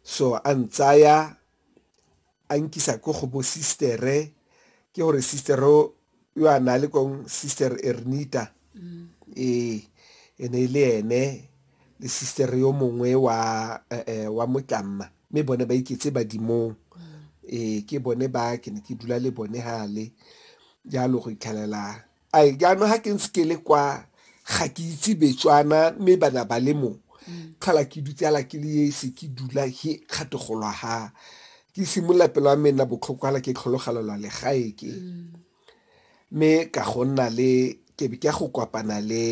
so a ntsaya a nkisa ko go bo sistere ke gore sister yo a na le kong sister ernita mm. ee e ne e le ene le sister yo mongwe wa eh, eh, wa motlamma mme bone ba iketse badimong mm. ee ke bone ba ke ne ke dula le bone gale jalo go itlhelela a jaanong ga ke ntse ke le kwa ga ke itse betswana mme bana ba le mo mm. tlhola ke dutse ala ke le ese ke dula he kgategolo ha ke simolola pelo ya mena botlhoko ala ke tlhologalelwa legae ke mm. mme ka go nna le ke be ke ya go kopana le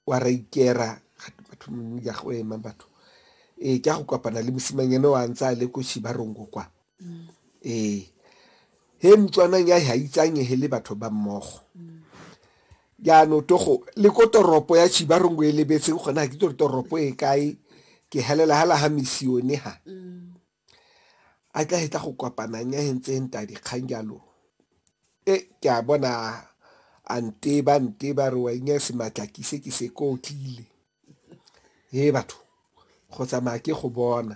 wa ra ikera gate batho mongwe ya go ema batho ee ke a go kopana le mosimang ene wa ntse a le ko shibarongo kwa ee he motswanang ya ga itsanyehe le batho ba mmogo jaano togo le ko toropo ya shibarongo e lebetseng gona ga ke tore toropo e kae ke helela ga la ga misione ga a tla hetla go kopanang ya hentseng ta dikgang jalo e ke a bona a nte ba nte ba re wa inya se matla ke se ke se ko tlile he batho go tsamaya ke go bona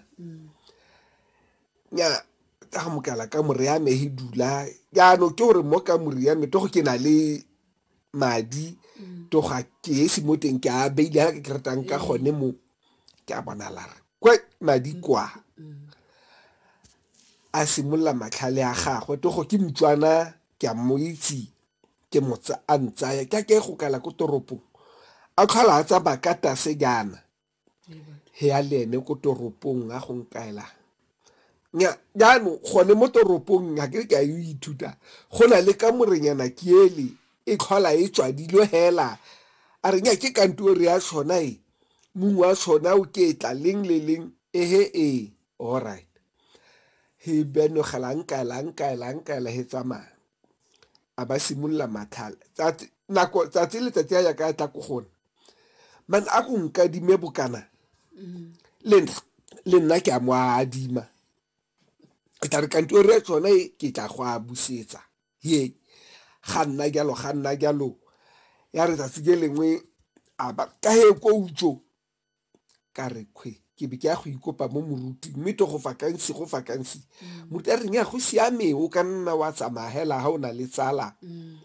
nya ka go mokala ka more ya me he dula jaano ke gore mo ka more ya me to go ke na le madi to ga ke esi mo teng ke a beile ha ke ratang ka gone mo ke a bona lara kwa madi kwa a simolola matlhale a gagwe to go ke motswana ke a mo itse ke motsa a ntsaya ka ke go kala ko toropong a tlhola a tsamaya ka tase jaana he ya le ene ko toropong a go nkaela jaanong gone mo toropong ga ke ka yo ithuta go na le ka morenyana ke ele e tlhola e tswadilwe hela a re nya ke kantore ya tshona e Mong wa sona o ketla leng le leng. Ehe ee, alright. He benogela nkaela nkaela nkaela he tsamaya a ba simolola matlhale tsatsi nako tsatsi letsatsi a ya ka tla ko gona man a go nkadime bokana le nna le nna ke a mo a adima e tla re kantore tsone ke tla go a busetsa ye ga nna jalo ga nna jalo ya re tsatsi ke lengwe a ba ka he ko utso ka re kgwe ke be ke ya go ikopa mo moruti mme to go fakansi go fakansi mm. moruti a reng ya go siame o ka nna wa tsamagela ga o na le tsala mm.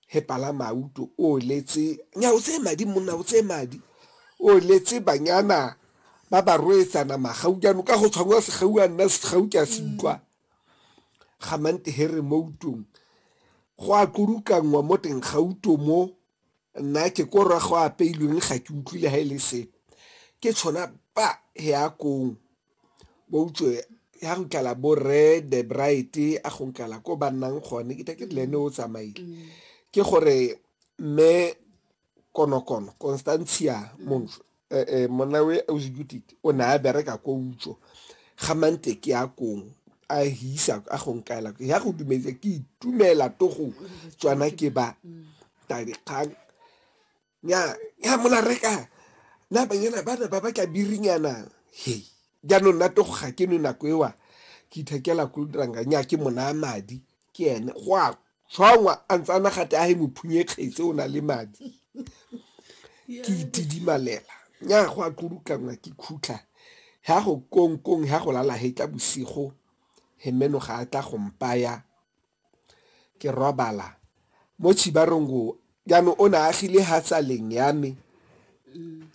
he pala mauto o letse nya o tseye madi monna o tseye madi o letse banyana ba ba roetsana magaujano ka go tshwangwa segau a nna segau ke a se mm. utlwa ga Mount Harry mo utong go a kulukanngwa mo teng ga uto mo nna ke ko rra go apeilweng ga ke utlwile ga e le sepe ke tshwana ba he ya kong bo utswe ya go tlala bo rre the bright a go tlala ko ba nnang gone ke ke le ene o tsamaile ke gore mme konokono constantia monjo eh, eh, monna we ausegutite o ne a bereka ko utso ga manteke ya kong a hisa a go nkaela ya go dumetse ke itumela to go tswana ke ba tabikgang ya ya mola reka na banyana ba ne ba batla birinyana he jaanong nna to go ga ke no nako ewa ke ithekela ko diranga nya ke mona madi ke ene go a tshwangwa a ntse a nagate a he mophunye kgetse o na le madi ke itidimalela nya go a tlurukanngwa ke khutlha ya go kongkong ya go lala he tla bosigo he meno ga a tla go mpaya ke robala mo tshibarong go Jaanong o ne a agile ha tsaleng ya me,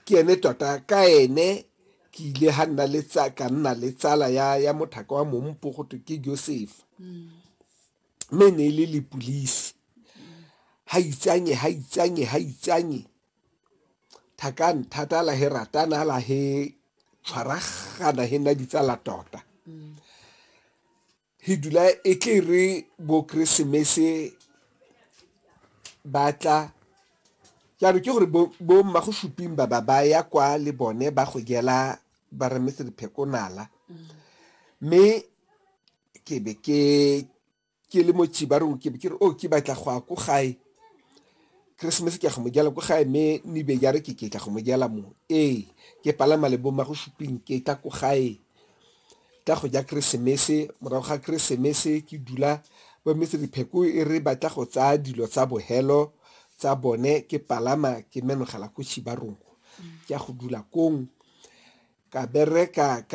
ke ene tota ka ene ke ile ha nna le ka nna le tsala ya ya mothaka wa mompo go twe ke Josefa mme ne e le lepulisi ha itsanye ha itsanye ha itsanye thakang thata la he ratana la he tshwaragana he nna ditsala tota He dula e tle re bo Keresemese ba tla jaanong ke gore bo mma go suping ba ba ba ya kwa le bone ba go jela ba remetse diphekonala mme ke be ke ke le mo chibarong ke be ke re o oh, ke batla go ya ko gae keresemese ke ya go mo jela ko gae mme nebe jare ke ke tla go mo jela mo ee ke palama le bo mma go suping ke tla ko gae Ka go ja Keresemese, morago ga Keresemese ke dula bo metsedipheko e re batla go tsaya dilo tsa bohelo tsa bone ke palama ke menogela ko Chibarongo ke ya go dula kong ka bereka ka